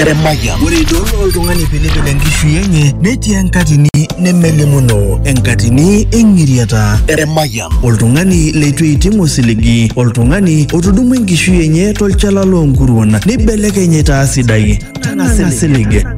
Eremaya. Ore idol oltung'ani pilipil enkishui enye netii enkatini nemelimuno, enkatini eng'iriata. Eremaya. Oltung'ani leitu eiting osiligi, oltung'ani otudumua enkishui enye tolchala loonkuruon neibelekeny aitaa sidai. Tang'asa isilig.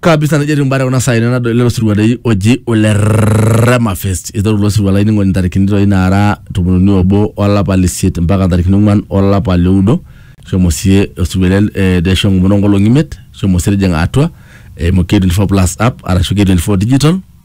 kabisa nejo etiu mbare kuna saai tenadol lelo sirua dei oji ole Rema Fest iteru ilo sirua lainining'oni ntarikini doi naara tomoniuni obo olapa le isiet mpaka ntarikini ong'uan olapa le oudo shomo sie osirua le eh, de shomo enkomono onkolong'i imiet shomo sie tijing'a atua eimu K24 plus app arashu K24 digital